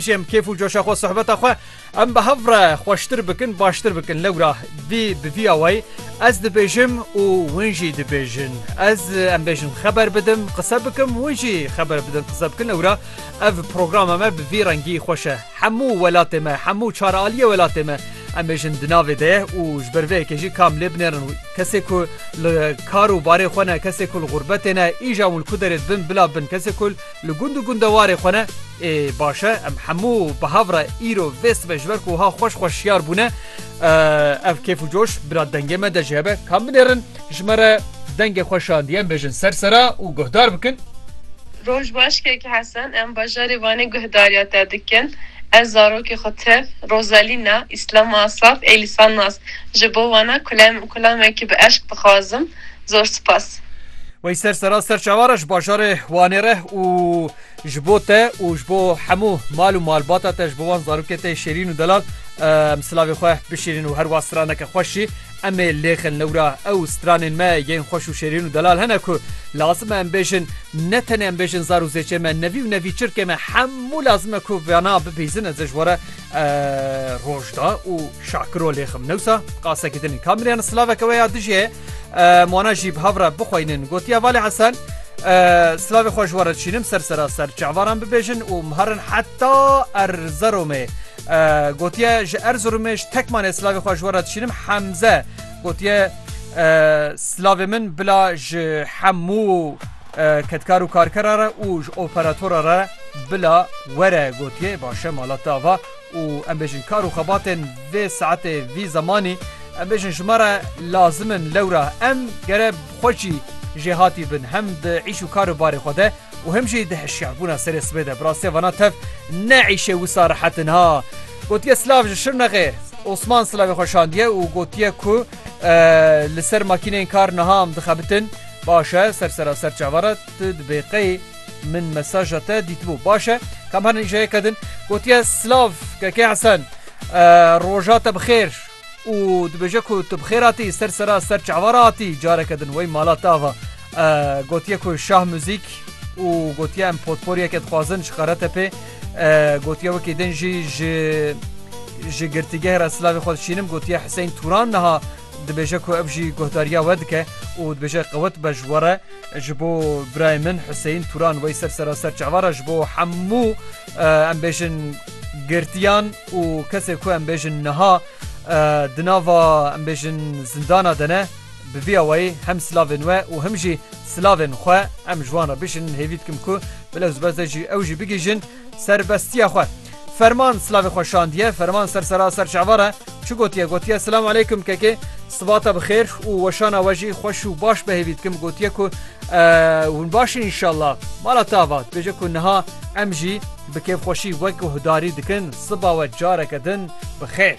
Jê em kêf û coşa xwe sohbeta xwe em bi hev re xweştir bikin baştir bikin lewra dî bi vî awayî ez dibêjim û hûn jî dibêjin ez em bêjin xeber bidim qise bikim hûn jî xeber bidin qise bikin lewra ev programa me bi vî rengî xweş e hemû welatê me hemû çaraliyê welatê me em bêjin di navê de ye û ji ber vê yekê jî kam lê binêrin wî kesê ku li kar û barê xwe ne kesê ku li xûrbetê ne îja hûn li ku derê dibin bila bin kesê ku Li gund û gundewarê xwe ne. Ê baş e, em hemû bi hev re îro vê sibê ji ber ku wiha xweş xweş şiyar bûne. Ev kêf û coş bila dengê me de jî hebe. Kam binêrin ji me re dengê xwe şandî em bêjin ser sera û guhdar bikin. Roj baş Kek Hesen, em bajarê Vanê guhdariya te dikin. Ez zarokê xwe tev, Rosalina, Islama Asaf, Elisa Naz, ji bo wana kulam kulamekî bi eşq dixwazim. Zor spas. Wey ser sera ser çavara ji bajarê Wanê re û ji bo te û ji bo hemû mal û malbata te ji bo wan zarokê tê şêrîn û delal em silavê xwe bişîrin û herwa straneke xweş jî em ê lêxin lewra ew stranên me yên xweş û şêrîn û delal hene ku lazim e em bêjin ne tenê em bêjin zar û zêçê me nevî û nevî çirkê me hemû lazim e ku vana bibîzin ez ê ji were rojda û şakiro lêxim newsa qasekî dinê kamiriyan silaveke we ya dijî heye. Mwana jî bi hev re bixweynin gotiya Valê Hesen Slavê xwe ji we re dişînim ser seraser çavaran bibêjin û miherin heta Erzeromê. Gotiye ji Erzeromê ji tekmanê Slavê xwe ji we re dişînim hemze gotiye Slavê min bila ji hemû ketkar û karkera re û ji operatora re bila were gotiye başe malata va û em bêjin kar û xebatên vê saetê vî zemanî em bêjin ji me re lazim in lewra em gere bi xweşî jêhatî bin hem di îş û kar û barê xwe de û him jî di hişyarbûna serê sibê de bi rastî vana tev ne îşê wisa rehet in ha gotiye silav ji şirnexê Osman silavê xwe şandiye û gotiye ku li ser makîneyên kar niha em dixebitin baş e ser seraser çavara tu dibê qey Min mesaja te dîtibû. Baş e. Kam her nîşe ye kedin. Gotiye silav Keke Hesen. Roja te bi xêr. Û dibêje ku tu bi xêr hatî ser sera ser çava re hatî careke din wey mala te ava. Gotiye ku şah muzîk û gotiye em potporiyeke dixwazin ji Karate pê. Gotiye wekî din jî ji ji girtîgeh re silavê xwe dişînim. Gotiye Hiseyn Turan niha Dibêje ku ev jî guhdariya we dike û dibêje qewet be ji we re ji bo birayê min Huseyîn Turan wey ser seraser çavara ji bo hemû em bêjin girtiyan û kesê ku em bêjin niha di nava em bêjin zindana de ne bi vî awayî hem silavên we û him jî silavên xwe em ji wan re bişînin hêvî dikim ku bi lewzbeze jî ew jî bigihîjin serbestiya xwe. Ferman silavê xwe şandiye. Ferman ser sera ser çavar e. Çi gotiye? Gotiye Silam aleykum kekê. Sibata bi xêr û weşana we jî xweş û baş be hêvî dikim. Gotiye ku hûn baş in înşallah. Mala tava dibêje ku niha em jî bi kêfxweşî wek guhdarî dikin. Siba we careke din bi xêr.